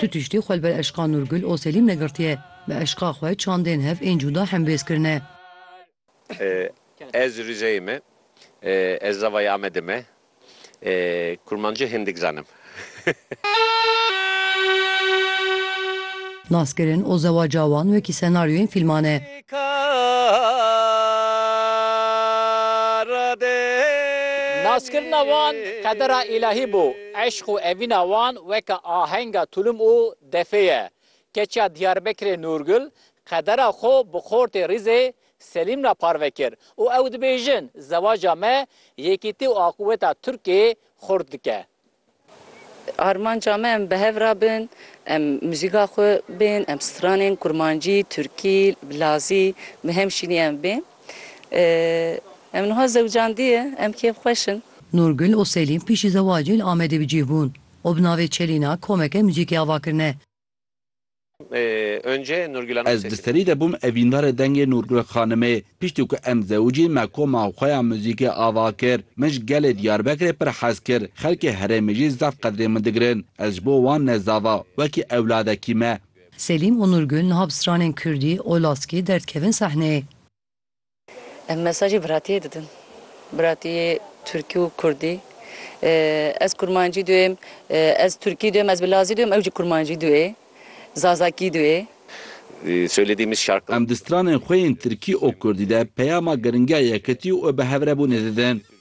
Tu tiştî xwe li ber eşqa Nûrgul Oselîm negirtiye, bi eşqa xwe çandên hev ên cûda hembêz kirine. Ez Rîzeyê me. Ez zavayê Amedê me. Kurmanci hindik zanim. Naskirin û zewaca wan wekî senaryoyên fîlman e. Naskirina wan qedera îlahî bû. Eşq û evîna wan weke ahenga tulum û defê ye. Keçiya Diyarbekirê Nûrgul qedera xwe bi xortê rîzê Selîm re parve kir û ew dibêjin, Zewaca me yekîtî û aqûweta Tirkê xurt dike. Armanca me em bi hev re bin, em muzîka xwe bên, em stranên kurmancî, tirkî, lazî bi hem şînî em bên. Em niha zewcandiye, em kêfxweş in. Nûrgul û Selîm piştî zewacê li Amedê bi cîh bûn û bi navê Çelîna komeke muzîkê ava kirine. Ez di serî de bûm evîndarê dengê Nûrgul xanimê. Piştî ku em zewicîn me koma xwe ya muzîkê ava kir. Min ji gelê Diyarbekirê pir hez kir. Xelkê herêmê jî zaf qedrê min digirin. Ez ji bo wan ne zava, wekî ewladekî me. Selîm û Nûrgul niha bi stranên kurdî û laskî derdikevin sehneyê. Em mesajê biratiyê didin. Biratiyê tirkî û kurdî. Ez kurmancî duyêm, ez tirkî duyêm, ez bi lazî duyêm, ew jî kurmancî duyê, zazakî duyê. Söylediğimiz şarkılar. Em di stranên xwe yên tirkî û kurdî de peyama giringiya yekitî û bihevrebûnê didin.